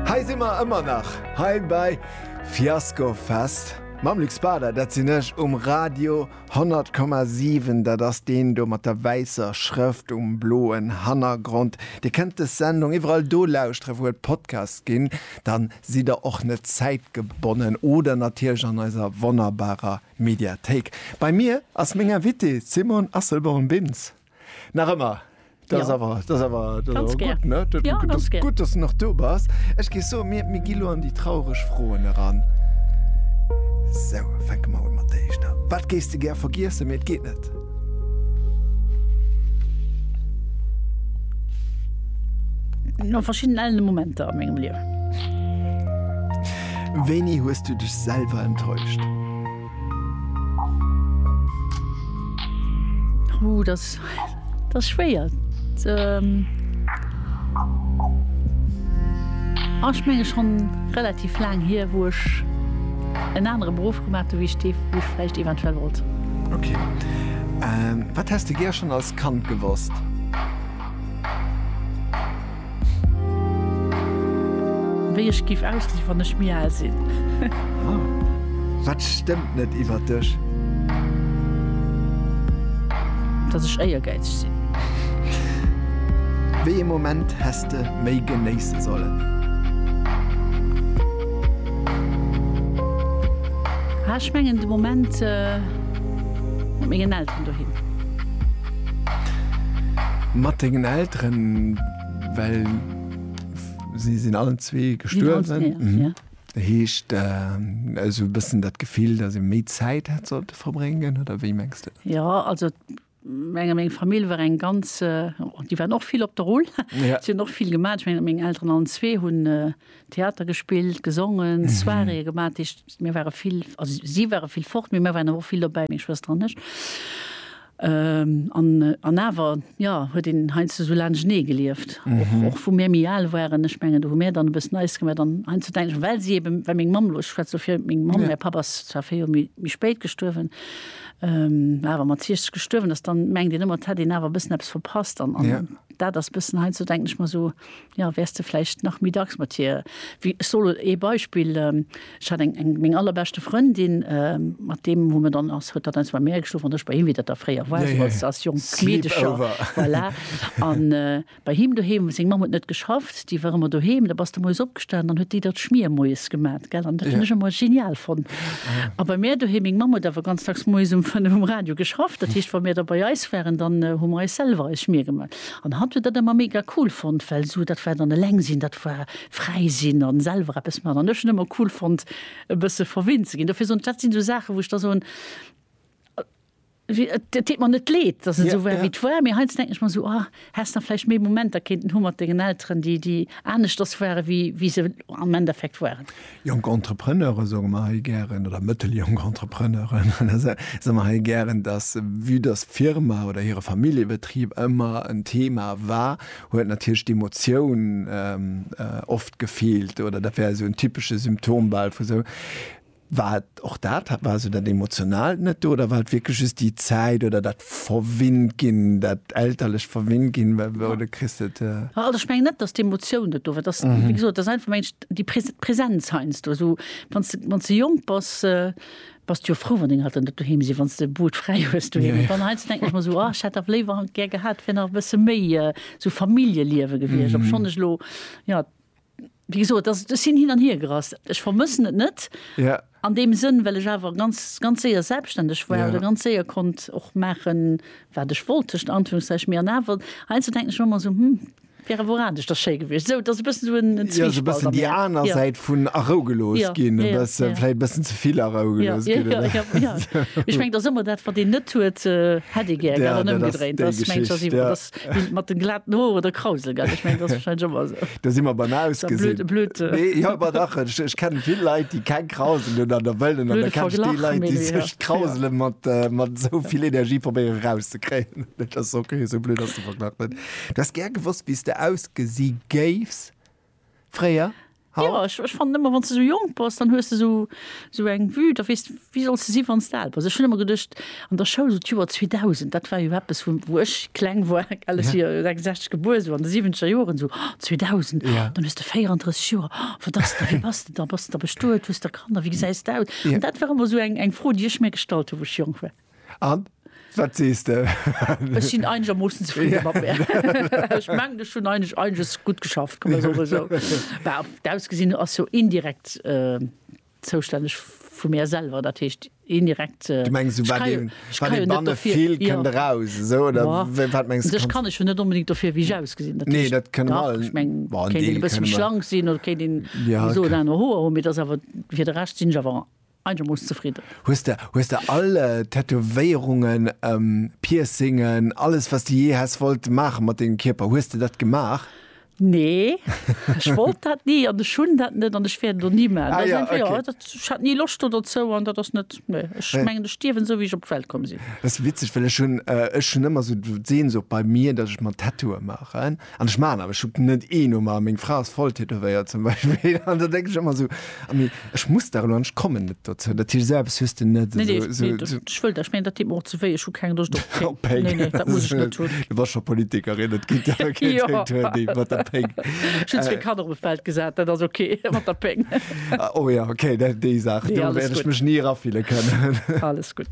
Hei si mer ëmmer nach hei bei Fiasco Fest mam Luc Spader. Dat sinn ech um Radio 100,7. Dat ass deen do mat der wäisser Schrëft um bloen Hannergrond. Dir kënnt des Sendung iwwerall do lauschteren, wou et Podcasts ginn. Da sidd der och net zäitgebonnen. Oder natierlech an eiser wonnerbarer Mediathéik. Bei mir ass meng Invitée d'Simone Asselborn-Bintz. Nach ëmmer. Dat ass awer, dat ass awer, dat ass awer gutt, ne? Dat ass gutt, dass du nach do bass. Ech géif soen, mir, mir gi lo an déi traureg Froen eran. Sou, fänke mer un mat der éischter. Wat géifs de gär vergiessen, mee et geet net? No verschiddenen ellene Momenter a mengem Liewen. Wéini hues du dech selwer enttäuscht? Huh, das, das ist schwer. Ähm, ah, ich meine schon relativ lang hier, wo ich en anere Beruf gemat wie Steef woch flecht eventuell wollt. Okay. Ähm, wat hast du ger schon als Kand gewosst? Wéi ech giff ausgesinn wann ech méi aal sinn. Huh, wat stëmmt net iwwert dech? Dass ech éiergäizeg sinn. Wéi ee Moment häss de méi genéisse sollen? Ah, ech mengen de Moment mat mengen Elteren doheem. Mat dengen Elteren, well si sinn allen zwee gestuerwen. Dat heescht, esou e bëssen dat Gefill, datt ee méi Zäit hätt sollte verbréngen, oder wéi mengs de? Jo, also meng meng Famill war eng ganz, déi waren och vill op der Rull, si hunn och vill gemaach. Ech mengen, meng Elteren allen zwee hunn Theater gespillt, gesongen, Soiréeë gemaach, dat heescht, mir ware vill, also si ware vill fort, mee mir waren awer och vill dobäi, meng Schwëster an ech. An awer, jo, huet een heiansdo sou laanschtenee gelieft, och wou mir méi al waren. Ech mengen, do hu mir dann e bëssen eis gemaach. An heiansdo denken ech, well si eben, well meng Mamm, elo ech schwätze elo fir meng Mamm, mäi Papp ass zwar véier Joer méi spéit gestuerwen, awer mat 60 gestuerwen ass, dann mengt een ëmmer, et hätt een awer e bëssen eppes verpasst. An dat ass e bëssen, heiansdo denken ech mer sou, Jo, wärs de vläicht nach méi dacks mat hir. Wéi, ech soll ee Beispill, ech hat eng, eng, meng allerbeschte Frëndin, mat deem hu mer dann, ass, huet dat eins bei mär geschlof an ech bei him, wéi dat da fréier war, esou als, als jonk Meedecher, voilà. An bei him doheem, seng Mamm huet net geschafft, déi war ëmmer doheem, da bass de moies opgestanen, dann huet déi der d'Schmier moies gemat, gell, an dat hunn ech ëmmer genial fonnt. A bei mär doheem, meng Mamm huet awer ganz dacks moies um fënnef um Radio geschafft, dat heescht, wa mir da bei eis waren, dann hu mer eis selwer eis Schmier gemat. An hat huet dat ëmmer mega cool fonnt, well esou dat war dann eleng sinn, dat war fräi sinn a selwer eppes maachen. An ech hunn ëmmer cool fonnt e bësse verwinnt ze ginn. Dofir soen ech, dat sinn esou Saachen, wou ech da soen, et deet mer net leed, datt et esou war, wéi et war. Mee heiansdo denken ech mer esou, ah, häss nach vläicht méi Momenter kéinten hu mat dengen Elteren, déi aneschters ware wéi se am Endeffekt waren. Jonk Entrepreneure soe mer hei gären, oder mëtteljonk Entrepreneuren, soe mer hei gären, dass, vue dass d'Firma oder hire Familljebetrib ëmmer en Thema war, huet natierlech d'Emotioun oft gefeelt, oder dat wär esou en typesche Symptom bal vu sou, wat Och dat hat, war esou dat Emotionaalt net do oder war et wierklech just déi Zäit oder dat verwinnt ginn, dat elterlecht verwinnt ginn, wou de kriss et. Also ech mengen net, datt d'Emotioun net do war, datt, wéi gesot, datt einfach mengen ech déi Präsenz heiansdo esou, wann s de, wann s de jonk bass, bass de jo frou, wann deng Elteren net doheem sinn, wann s de Boot fräi hues doheem. Mee dann heiansdo denken ech mer esou, oh ech hätt dach léiwer gär gehat, et wär nach e bësse méi esou Familljeliewe gewiescht, obschonn ech elo, jo. Wéi gesot, dass, ech sinn hin an hier gerast. Ech vermëssen et net an deem Sënn, well ech awer ganz, ganz séier selbstständeg war oder ganz séier konnt och maachen, wat ech wollt, tëschent Anführungszeichen. Mee an awer, heiansdo denken ech mer ëmmer esou, Hm, wär awer oradesch da schéi gewiescht. Esou, et ass e bëssen esou en Zwiespalt an mir. Jo, esou e bëssen déi aner Säit vun arougelooss ginn, e bësse, vläicht e bëssen ze vill arougelooss ginn, oder? Jo, jo, jo. Mee ech mengen, et ass ëmmer dat, wat een net huet, hätt ee gär gehat an ëmgedréint. Dat ass déi Geschicht, jo. Bild mat den glaten Hoeren oder Krausel gell? Ech mengen dat ass wahrscheinlech ëmmer esou. Do si mer beim Ist ja Ausgesinn. blöd, blöd, äh, Nee, jo, awer dach, ech, ech kenne vill Leit, déi keng Krausel hunn an der wëllen an da blöde kenne ech déi Verglach, Leit, déi Melo, ja. sech Ja. d'Krausele mat, äh, mat esou vill Energie probéieren erauszekréien. Dat ass ok, esou blöd ass de Verglach net. Du häss gär gewosst, wéi s de ausgesi géifs. Fréier? Haut? Jo, ech fannen ëmmer, wann s de sou jonk bass, dann hues de sou, sou eng Vue, da weess de, wie solls de si wann s de al bass. Ech hunn ëmmer geduecht an der Schoul, sou d'Joer 2000, dat war jo eppes, wou, wou ech kleng war, well ech si jo 66 gebuer, sou an de siwwenzeger Joren, sou, oh, 2000, oh, dann hues de 34 Joer, oh, wat ass da, wéi bass de da, bass de da bestuet, hues de da Kanner, wéi gesäis de aus? An dat war ëmmer sou eng, eng Fro, déi ech mir gestallt hu wou ech jonk war. An? Wat sees de? Ech sinn einegermoossen zefridde mat mär. Ech mengen, ech hunn einig, einiges gutt geschafft, kann man soen, esou. Bah, op d'Ausgesinn ass jo indirekt zoustänneg vu mär selwer, dat heescht indirekt, ech kréie, ech kréie jo net dofir. Du mengs, wat ee, wat ee banne vill, kënnt eraus, esou, oder wéi, wat mengs du? Ech kann ech jo net onbedéngt dofir, wéi ech ausgesinn, dat heescht. Nee, dat kënne mer all. Ech meng, kéint een e bësse méi schlank sinn oder kéint een esou oder aner Hoer hunn, mee et ass awer, fir de Rescht sinn ech awer. Eigermooss zefridden. Hues de hues de all Tätowéierungen, Piercingen, alles wat s de jee häss wollt maache mat dengem Kierper, hues de dat gemaach? Nee, ech wollt dat ni an ech hunn dat net an ech wäert et och ni maachen. Dat ass einfach, jo, dat, ech hat ni Loscht do dozou an dat ass net, nee. Ech mengen, ech stierwen esou wéi ech op d'Welt komm sinn. Dat ass witzeg, well ech hunn, ech hunn ëmmer esou d'Sehnsucht bei mir, datt ech mer Tattooe maachen. An ech maachen awer Schuppen net ee nom aner. Meng Fra ass voll tätowéiert zum Beispill an da denken ech ëmmer esou, ah mee ech muss dach elo an ech kommen net dozou. Dat heescht, esou eppes hues de net esou. Nee, nee, dat, ech wëll dat, ech mengen dat deet mer och ze wéi, ech hu keng Loscht op Péng. Op Péng. Nee, nee, dat muss ech net hunn. Du bass scho Politikerin, et geet awer keen Tatoueur dee mat der Péng. Ech hunn zwee Kanner op e Feld gesat, dat ass ok mat der Péng. Oh jo, ok, dat, déi Saach, do wäert ech mech ni erafille kënnen. Alles gutt.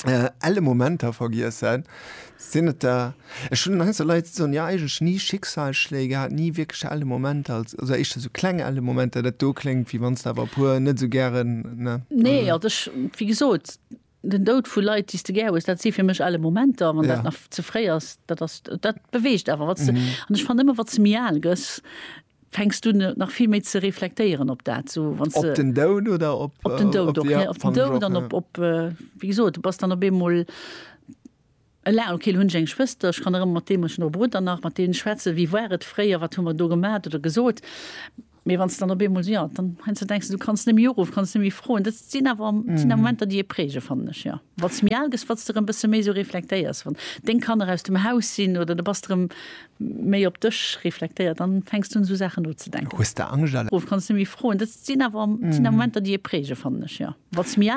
äh, elle Momenter vergiessen. Sinn et der, ech hun heiser Leiit soen ja eigentlech ni Schicksalsschléi gehat, ni wierklech elle Momenter, als also éischter sou kleng elle Momenter, dat do kléngt wéi wann s de awer e puer net sou gären, ne? Nee, also ech, wéi gesot, den Doud vu Leit, déi s de gär hues, dat si fir mech elle Momenter. Wann dat Ja. nach ze fréi ass, dat ass, dat beweegt awer, wat s de, an ech fannen ëmmer, wat s de méi al gëss, Fänks du nach vill méi ze reflektéieren op dat, sou wann se. Op den Doud oder op. Op den Doud och, ja. Op den Doud an op, op, wéi gesot, du bass dann op eemol eleng. Okay, lo hunn ech eng Schwëster, ech kann erëm mat deem, ech hunn och e Brudder nach, mat deene schwätzen, wéi war et fréier, wat hu mer do gemat oder gesot. Mee wann s de dann op eemol, ja, dann heiansdo denks de, du kanns net méi uruffen, kanns net méi froen. Dat sinn awer, sinn awer Momenter, déi ee prägen, fannen ech, jo. Wat s méi al gëss, wat s de erëm e bësse méi esou reflektéiers, wann deng Kanner aus dem Haus sinn oder du bass erëm Méi op dech reflektéiert, dann fänks du un sou Saachen nozedenken. Hues de Angscht? Ruff, kanns de méi froen. Dat sinn awer Momenter déi ee prägen, fannen ech, jo. Wanns de méi al.